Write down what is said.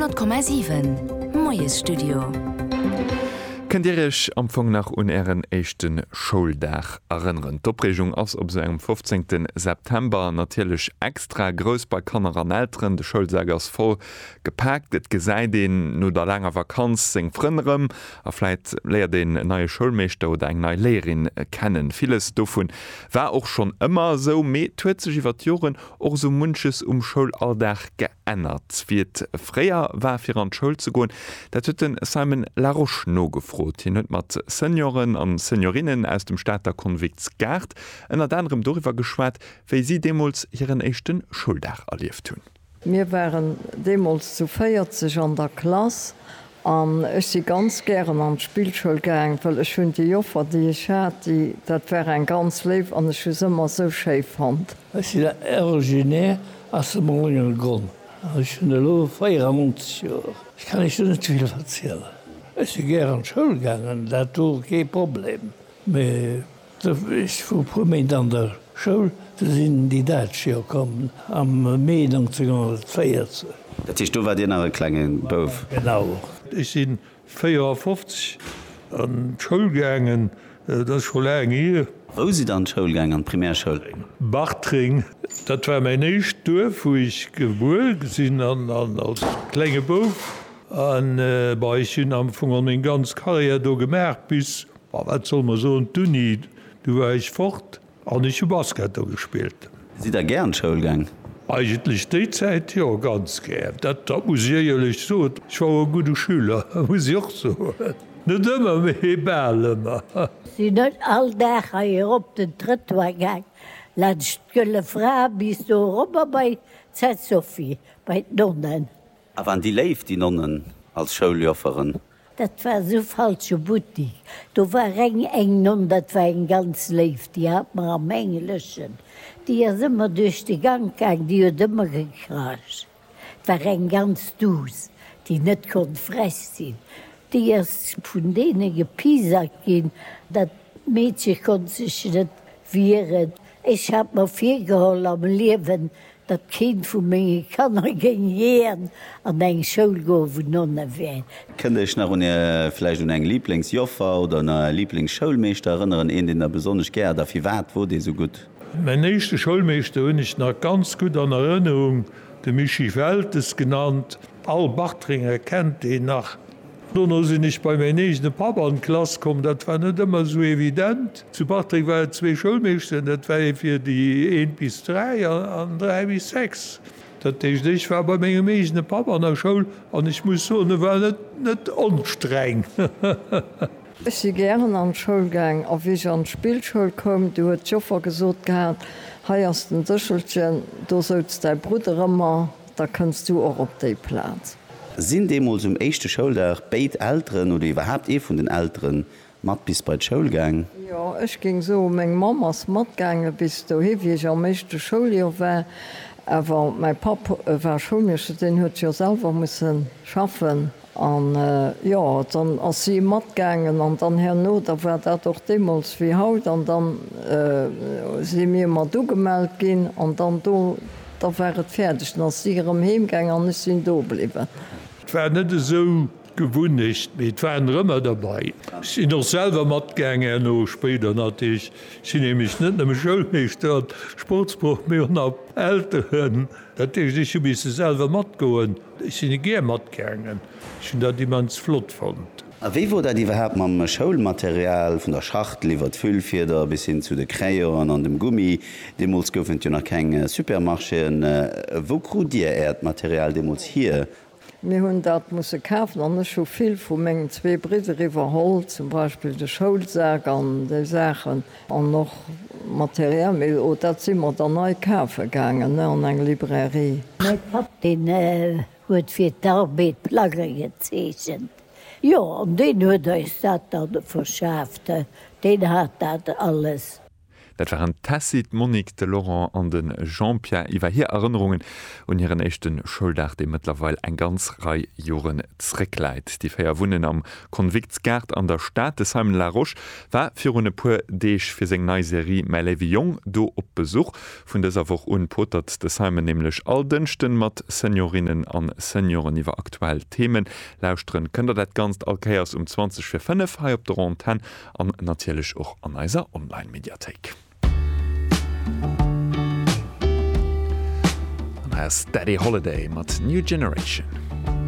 100,7 Moiesstudio. Kënnt Dir Iech am Fong nach un Ären éischte Schouldag erënneren? D'Opreegung ass op esou engem 15. September natierlech extra grouss bei Kanner an Elteren. De Schoulsak ass voll gepaakt, et gesäit een no der laanger Vakanz seng Frënn erëm a vläit léiert een en neie Schoulmeeschter oder eng nei Léierin kennen. Villes dovun war och schonn ëmmer esou, mee et huet sech iwwer d'Joren Och esou munches um Schoulalldag geännert. Wéi et fréier war fir an d'Schoul ze goen, dat huet de Simon Larosche nogefrot. Hien huet mat Senioren a Seniorinnen aus dem Stater Konvikts Gaart ënnert anerem doriwwer geschwat, wéi si deemools hiren éischte Schouldag erlieft hunn. Mir waren deemools zu 40 an der Klass An ech si ganz gären an d'Spillschoul gaang, well ech hunn déi Joffer, déi ech hat, déi, dat war eng ganz léif an ech hu se ëmmer esou schéi fonnt. Ech sinn originaire aus dem Mouléngergronn an ech hunn elo 94 Joer. Ech kann Iech do net vill verzielen. Ech si gär an d'Schoul gaangen, dat wor kee Problem, mee. Ech wor e puer Méint an der Schoul, du sinn déi Däitsch jo komm am Mee 1940. Dat heescht, do war Dir nach e klenge Bouf? Genau. Ech si 54 an d'Schoul gaangen, dat ass scho laang hier. Wou sidd Der an d'Schoul gaangen, an d'Primärschoul? Bartreng, dat war mäin éischt Duerf, wou ech gebuer sinn an als klenge Bouf. An, bon, ech hunn am Fong geholl meng ganz Karriär do gemaach bis Ma wat soll mer soen, d'Uni, du war ech fort an ech hu Basket do gespillt. Sidd der gär an d'Schoul gaang? Eigentlech déi Zäit jo, ganz gär. Dat muss ech éierlech soen. Ech war och e gudde Schüler, muss ech och soen. Net ëmmer, mee bal ëmmer. Sinn ech all Dag hei erop den Trëttoir gaang, laanscht d'Gëlle Fra bis do erobber bei d'Sainte-Sophie, bei d'Nonnen. A waren déi léif, déi Nonnen als Schouljofferen? Dat war esou falsche Buttik. Do war reng eng Nonn, dat war eng ganz léif, déi hat mer am Engleschen, déi ass ëmmer duerch de Gank gaang, déi huet ëmmer gekracht. Et war eng ganz duuss, déi net konnt frech sinn. Déi ass vun deene gepiesackt ginn. Dat Meedche konnt sech net wieren. Ech hat mer virgeholl am Liewen, datt keent vu menge Kanner géing jiän an eng Schoul goen, wou Nonne wären. Kënnt Iech nach un Är, vläicht un eng Lieblingsjoffer oder un Är Lieblingsschoulmeeschter erënneren? Een, deen Der besonnesch gär hat a firwat wor dee sou gutt? Mäin éischte Schoulmeeschter hunn ech nach ganz gutt an Erënnerung, de Mischii Weltes genannt, Al Bartrenger kennt deen nach. Dono sinn ech bei mäin eegene Papp an d'Klass komm. Dat war net ëmmer esou evident. Zu Bartreng war et zwee Schoulmeeschteren, dat war ee fir déi eent bis dräi an dräi bis sechs. Dat heescht, ech war bei mengem eegene Papp an der Schoul an ech muss soen, e war net onstreng. Ech si gären an d'Schoul gaang a wéi ech an d'Spillschoul koum, du huet d'Joffer gesot gehat, Hei ass den Séchelchen, do souz däi Brudder ëmmer. Da kënns du och op déi Plaz. Sinn deemools um éischte Schouldag béid Elteren oder iwwerhaapt ee vun den Eltere mat bis bei d'Schoul gaang? Jo, ech géing soen, meng Mamm ass matgaange bis dohi, wéi ech am éischte Schouljoer war. Awer mäi Papp war Schoulmeeschter, deen huet jo selwer musse schaffen An, jo, dann ass si matgaangen, an dann herno, da war dat och deemools wéi haut, an dann si mir mat ugemellt ginn, an dann do, da war et fäerdeg, dann ass si erëm heemgaangen an ech sinn do bliwwen. Et war net esou d'Gewunnecht, mee et waren der ëmmer derbei. Ech sinn och selwer matgaangen herno, spéider natierlech. Ech sinn nämlech net nëmme Schoulmeeschter an Sportsproff, mee och nach Elteren, dat heescht, ech hu misse selwer matgoen. Ech sin e gär matgaangen, ech hun dat immens flott fonnt. A wéi wor dat iwwerhaapt mam Schoulmaterial, vun der Schachtel iwwert d'Füllfieder bis hin zu de Crayonen an dem Gummi? Deemols goufen et jo nach keng Supermarchéen. Wou krut Dir Äert Material deemols hier? Mir hun dat musse kafen an ech hu vill vu mengen zwee Bridder iwwerholl, zum Beispill de Schoulsak an déi Saachen. An och Material, mee oh, dat si mer dann nei kafe gaangen an eng Librairie. Mäi Papp, deen huet fir d'Arbed Plagge gezeechent, jo, an deen huet eis dat da verschaaft, deen hat dat alles. Dat waren d'Tessy, d'Monique, de Laurent an de Jean-Pierre iwwer hir Erënnerungen un hiren éischte Schouldag, dee mëttlerweil eng ganz Rei Joren zréckläit. Déi véier wunnen am Convictsgaart an der Stad. De Simon Larosche War virun e puer Deeg fir seng nei Serie Mäi léiwe Jong do op Besuch. Vun dëser Woch un potert de Simon nämlech all Dënschden mat Seniorinnen an Senioren iwwer aktuell Themen. Lauschteren kënnt der dat Ganzt all Kéiers um 20 vir 5 hei op der Antenn an natierlech och an eiser Online-Mediathéik. An hei ass Daddy Holiday mat New Generation.